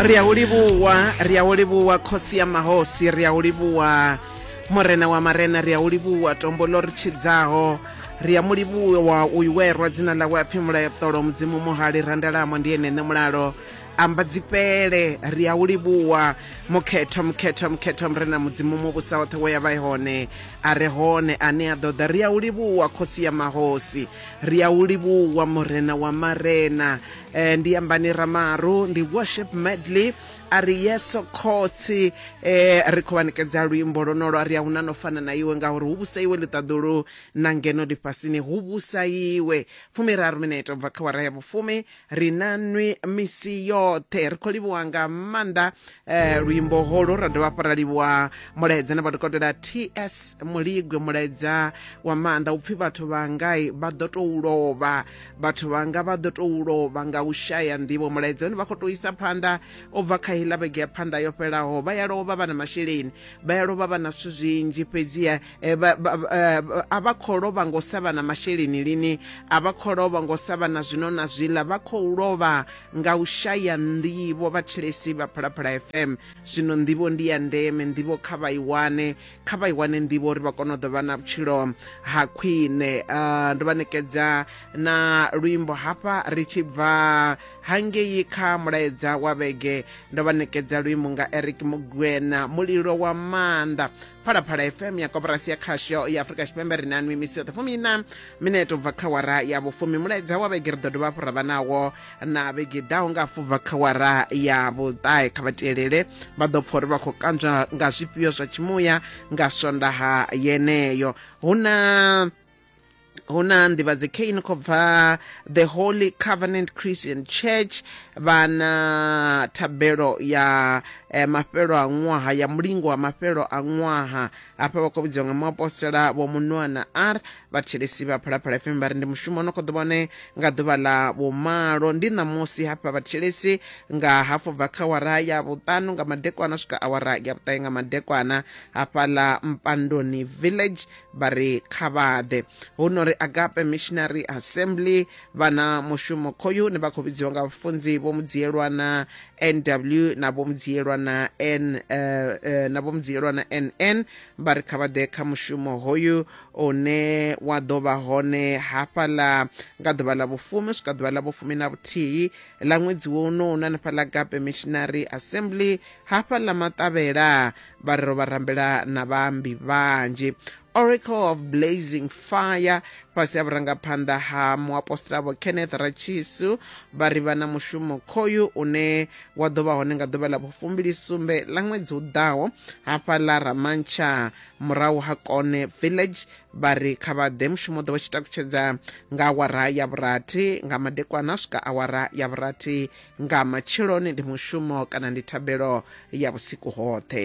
ri a u livhuwa ri a u livhuwa khosi ya mahosi ri a u livhuwa murena wa marena ri a u livhuwa tombo ḽo ri tshidzaho ri a mu livhuwa u iwerwa dzina ḽawe a pfhi mulayoṱolo mudzimu muhali randalamo ndi ene ṋe mulalo amba dzifhele ri a u livhuwa mukhetho mukhetho mukhetho murena mudzimu muvhusa woṱhe wo ya vha hone a re hone ane a ḓoḓa ri a u livhuwa khosi ya mahosi ri a u livhuwa murena wa marena eh, ndi yambani ramaru ndi worship medley a ri yeso khotsi eh, ri khou vha nekedza luimbo lonolo a ri a huna no fana na iwe ngauri hu vhusa iwe ḽiṱaḓulu na ngeno ḽifhasini hu vhusa iwe fumiraru minete u bva kha wara ya vhufumi ri na nwi misi yoṱhe ri khou livhuwa nga maanḓa eh, luimbo holo ra dovha hafhu ra livhuwa mulaedza na vhadokotela ts muligwe mulaedza wa maanḓa upfhi vhathu vha ngai vha ḓo tou lovha vhathu vhanga vha ḓo tou lovha nga u shaya nḓivho mulaedza une vha khou tou isa phanḓa u bva kha heiḽa vhege ya phanḓa yo fhelaho vha ya lovha vha na masheleni vha ya lovha vha na zwithu zwinzhi fhedziha eh, eh, a vha khou lovha ngo sa vha na masheleni lini a vha khou lovha ngo sa vha na zwino na zwiḽa vha khou lovha nga u shaya nḓivho vhathilesi vha phalaphala fm zwino nḓivho ndi ya ndeme nḓivho kha vha i wane kha vha i wane nḓivho uri vha kone u ḓo vha na vhutshilo ha khwine uh, ndo vha nekedza na luimbo hafha ri tshi bva hangei kha mulaedza wa vhege ndo vha nekedza luimbo nga eric mugwena mulilo wa maanḓa phalaphala fm ya koporasi ya khasho ya afurika tshipembe ri na nwi misi yoṱhe fumi ina minete ubva kha wara ya vhufumi mulaedza wa vhege ri ḓo dovha fhura vha nawo na vhege ḓaho nga fubva kha wara ya vhuṱahe kha vha tielele vha ḓo pfha uri vha khou kanzwa nga zwifhio zwa tshimuya nga swondaha yeneyo hu na hu na nḓivhadze kheini khou bva the holy covenant christian church vha na thabelo ya eh, mafhelo a ṅwaha ya mulingo wa mafhelo a ṅwaha hafha vha khou vhidziwa nga muapostola vho munoana r vhathetshelesi vha phalaphala fm vha ri ndi mushumo no khou ḓo vhone nga ḓuvha ḽa vhumalo ndi ṋamusi hafha vhathetshelesi nga hafhu bva kha wara ya vhuṱanu nga madekwana swika awara ya vhuṱahe nga madekwana hafha ḽa mpandoni village vha ri kha vhaḓe hu no ri agape missionary assembly vha na mushumo khoyu ne vha khou vhidziwa nga vhafunzi vho mudziyelwana nw na vho mudziyelwa na n eh, eh, na vho mudziyelwa na nn vha ri kha vha ḓe kha mushumo hoyu une wa ḓo vha hone hafhaḽa nga ḓuvha ḽa vhufumi u swika ḓuvha ḽa vhufumi na vhuthihi ḽa ṅwedzi wo uno una hanefhaḽa gape missionary assembly hafhaḽa maṱavhela vha ri ro vha rambela na vhaambi vhanzhi oracle of blazing fire fhasi ha vhurangaphanḓa ha muapostola vho kenneth rachisu vha ri vha na mushumo khoyu une wa ḓo vha hone nga ḓuvha ḽa vhufumbili sumbe ḽa ṅwedzi u ḓaho hafha ḽa ramantsha murahu ha kone village vha ri kha vha ḓe mushumo ḓo vha tshi takutshedza nga awara ya vhurathi nga madekwana swika awara ya vhurathi nga matsheloni ndi mushumo kana ndi thabelo ya vhusiku hoṱhe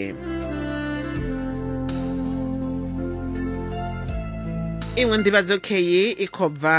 iṅwe nḓivhadzo kheyi i khou bva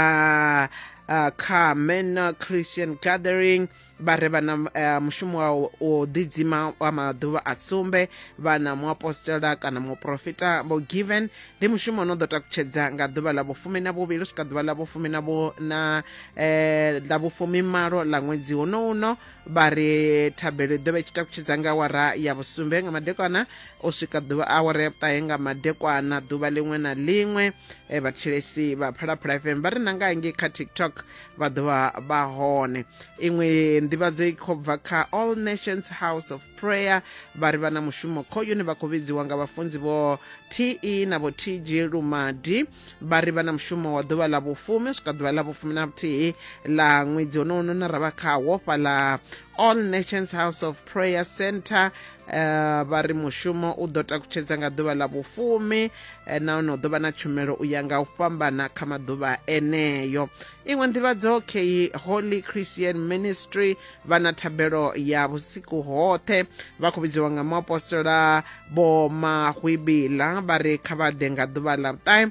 uh, kha manor christian gathering vha re vha na uh, mushumo wa u- u ḓidzima wa maḓuvha a sumbe vha na muapostola kana muprofita vho given ndi mushumo no ḓo takutshedza nga ḓuvha ḽa vhufumi na vhuvhili swika ḓuvha ḽa vhufumi na vhu na eh, ḽa vhufumi malo ḽa ṅwedzi uno uno vha ri thabelo i ḓo vha i tshi takutshedza nga awara ya vhusumbe nga madekwana u swika ḓuvha awara ya vhuṱahe nga madekwana ḓuvha ḽiṅwe na ḽiṅwe eh, vhathetshelesi vha phalaphala fm vha ri na nga ngei kha tiktok vha ḓovha vha hone iṅwe nḓivhadzo i khou bva kha all nations house of prayer vha ri vha na mushumo khoyuni vha khou vhidziwa nga vhafunzi vho te na vho tg lumadi vha ri vha na mushumo wa ḓuvha ḽa vhufumi u swika ḓuvha ḽa vhufumi na vhuthihi ḽa ṅwedzi honohono na ra vha khawo fhaḽa all nations house of prayer center uh, vha ri mushumo u ḓo takutshedza nga ḓuvha ḽa vhufumi eh, nahone u ḓo vha na tshumelo u ya nga u fhambana kha maḓuvha eneyo iṅwe nḓivhadzo key holy christian ministry vha na thabelo ya vhusiku hoṱhe vha khou vhidziwa nga muapostola vho mahwibila vha ri kha vha ḓe nga ḓuvha ḽa vhuṱahe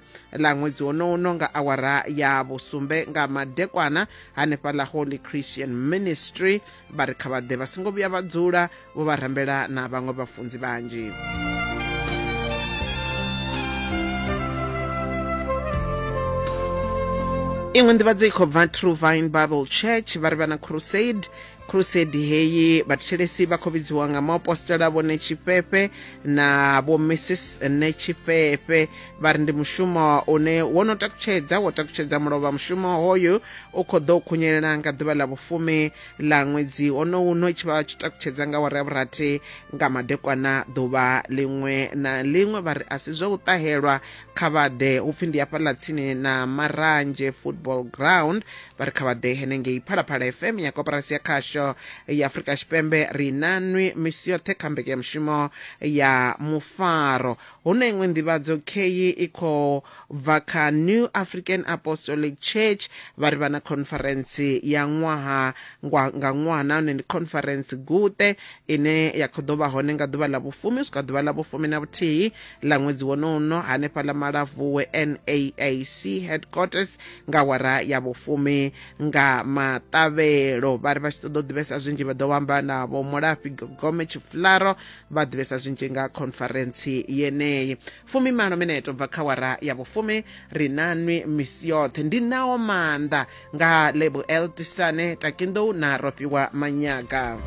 ḽa ṅwedzi wonouno nga awara ya vhusumbe nga madekwana hanefha ḽa holy christian ministry vha ri kha vha ḓe vha songo vhuya vha dzula vho vha rambela na vhaṅwe vhafunzi vhanzhi iṅwe nḓivhadzo i khou bva true vine bible church vha ri vha na crusade crusade heyi vhathelesi vha khou vhidziwa nga maapostola vho netshifhefhe na vho mrs netshifhefhe vha ri ndi mushumo une wo no takutshedza wo takutshedza mulovha mushumo hoyu u khou ḓo khunyelela nga ḓuvha ḽa vhufumi ḽa ṅwedzi onowu no tshi vha tshi takutshedza nga wara ya vhurathi nga madekwana ḓuvha ḽiṅwe na ḽiṅwe vha ri a si zwa u ṱahelwa kha vhaḓe hupfi ndi hafhaḽa tsini na maranzhe football ground vha ri kha vhaḓe henengei phalaphala fm ya koporasi ya khasho ya afurika tshipembe ri na nwi misi yoṱhe kha mbekanyamushumo ya mufaro Hu na iṅwe nḓivhadzo khei i khou bva kha New African Apostolic Church vha ri vha na khonferentsi ya ṅwaha ngwa- nga ṅwaha nahone ndi khonferentsi guṱe ine ya khou ḓo vha hone nga ḓuvha ḽa vhufumi u swika ḓuvha ḽa vhufumi na vhuthihi ḽa ṅwedzi wonowu no hanefha ḽa Malavhuwe NAAC headquarters nga wara ya vhufumi nga maṱavhelo vha ri vha tshi ṱoḓa u ḓivhesa zwinzhi vha ḓo vha amba na vho Mulafhi Gogome Tshifularo vha ḓivhesa zwinzhi nga khonfarentsi yeneyi fumimalo minete u bva kha wara ya vhufumi ri na nwi misi yoṱhe ndi naho maanḓa nga lebuel tisane takindou na rofhiwa manyaga